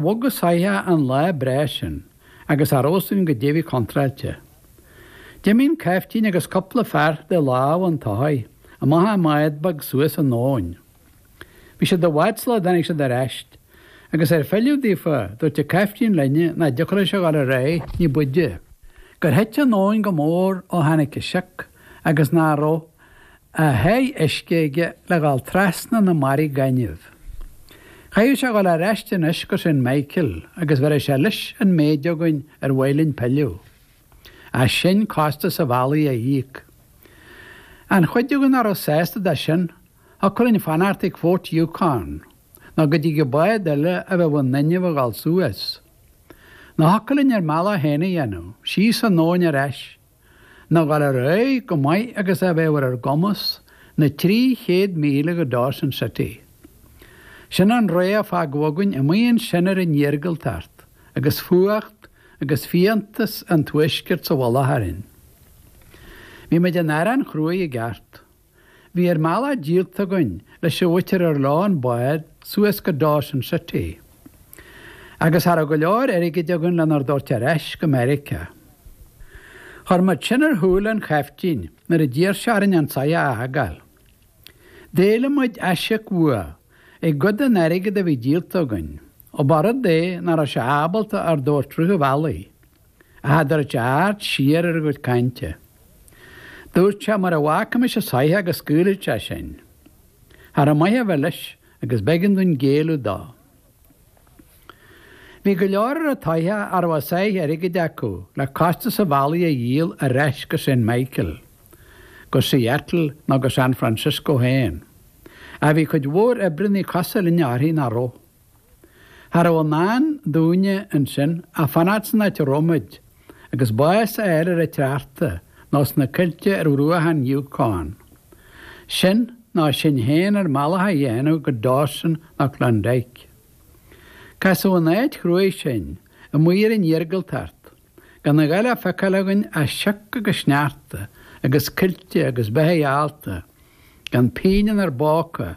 Bhogfadh an soitheach an lá breá sin agus cha raibh a fhios againn goidé a bhí contráilte. D'imigh an caiftín agus cupla fear de lámha an tsoithigh amach i mbád beag suas an abhainn. Bhí siad i bhfad sula dtáinig siad ar ais, agus ar filleadh daofa dúirt an caiftín linn nach dtiocfadh leis a dhul ar aghaidh ní b'fhaide, gur thit an abhainn go mór ó tháinig an sioc agus nach raibh a sháith uisce aige le dhul trasna na mbarraí gainimh. Chaithfeadh sé dhul ar ais anois go Saint Michael agus bhéarfadh sé leis an méid againn ar mhaith linn pilleadh ach sinn costas an bhealaigh a íoc. An chuid againn nach raibh sásta de sin, thiocfadh linn fanacht ag Fort Yukon nó go dtigeadh bád eile a bheadh in inmhe a dhul suas. Nó thiocfadh linn ár mbealach féin a dhéanamh, síos an abhainn ar ais, nó a dhul ar aghaidh chomh maith agus a bheadh ar ár gcumas na trí chéad míle go Dawson City. Sin an rogha a fágadh againn amuigh ansin ar an iargúltacht agus fuacht agus fiántas an tuaiscirt sa mhullach orainn. Bhí muid in arán chruaidh i gceart. Bhí ár mbealach díolta againn leis an mhuintir ar leo an bád suas go Dawson City, agus cha raibh go leor airgid againn lenár dtabhairt ar ais go Meiriceá. Chuir muid sin ar shúile an chaiftín nuair a d'iarr sé orainn an soitheach a fhágáil. D'éiligh muid aisíoc uaidh i gcuid den airgead a bhí díolta againn, ó ba rud é nach raibh sé ábalta ár dtabhairt rith an bhealaigh. a hadhairt aird siar ar ár gcuid cainte. Dúirt sé mura bhfágfaimis an soitheach go scaoilfeadh sé sinn. Cha raibh maith a bheith leis agus b'éigean dúinn géilleadh dó. Bhí go leor ar an tsoitheach a raibh a sáith airgid acu le costas an bhealaigh a dhíol ar ais go Saint Michael, go Seattle nó go San Francisco féin. Ach bhí cuid mhór oibreannaí cosúil linne féin nach raibh. Cha rabh i ndán dúinne ansin ach fanacht san áit a rabh muid, agus bás a fháil ar an tsneachta nó sna coillte ar bhruacha an Yukon. Sin, nó sinn féin ár mbealach a dhéanamh go Dawson nó Klondike. Casadh in áit chruaidh sinn, amuigh ar an iargúltacht, gan a dhath le feiceáil againn ach sioc agus sneachta agus coillte agus beithigh allta gan pingin inár bpóca,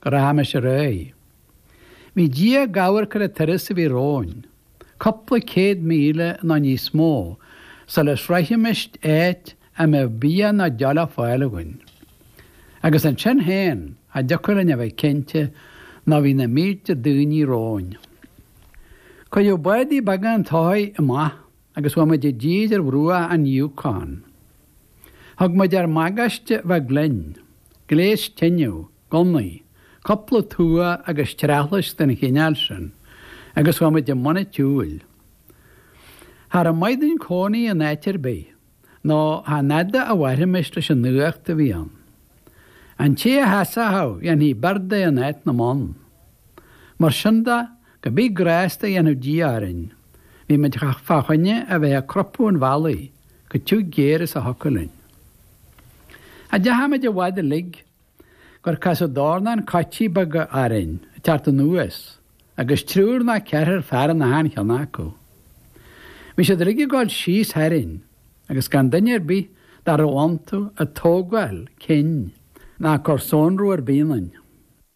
go rachaimis ar aghaidh. Bhí Dia ag amharc ar an turas a bhí romhainn, cupla céad míle nó níos mó sula sroichfimis áit a mbeadh bia ná deoch le fáil againn. Agus ansin féin, cha dtiocfadh linn a bheith cinnte nó bhí na mílte daoiní romhainn. Cuireadh bádaí beaga an tsoithigh amach agus chuaigh muid i dtír ar bhruacha an Yukon. Thug muid ár mbagáiste beag linn, gléas tineadh, gunnaí, cúpla tua agus treathlais den chineál sin, agus chuaigh muid i mbun an tsiúil. Cha rabh maith dúinn cónaí in áit ar bith, nó chan fhada a mhairfimis leis an fhuacht a bhí ann. An té a sheasfadh dhéanfaí bord de in áit na mbonn. Mar sin de, Cibé grásta a dhéanfadh Dia orainn, bhí muid fá choinne a bheith ag crupadh an bhealaigh chomh tiugh géar is a thiocfadh linn. Cha deachaigh muid i bhfad uilig gur casadh dornán coití beaga orainn ag teacht anuas agus triúr ná ceathrar fear in achan cheann acu. Bhí siad uilig ag dul síos tharainn agus gan duine ar bith dá raibh iontu ag tógáil cinn ná ag cur sonrú ar bith ionainn.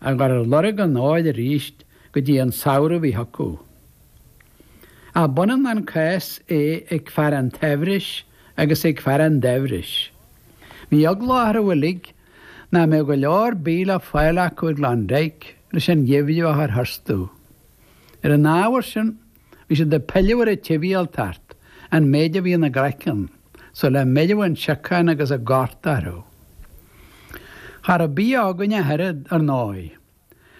a gcur ar lorg an óir arís go dtí an samhradh a bhí chucu. Ach b'ionann an cás é ag fear an tsaibhris agus ag fear an daibhris. Bhí eagla orthu uilig nach mbeadh go leor bídh le fáil acu i gClondyke leis an gheimhreadh a chur tharstu. Ar an ábhar sin, Bhí siad ag pilleadh ar an tsibhialtacht an méid a bhí ina gcraiceann sula mbeireadh an siocán agus an gorta orthu. Cha rabh bia againn ach oiread, ar ndóigh.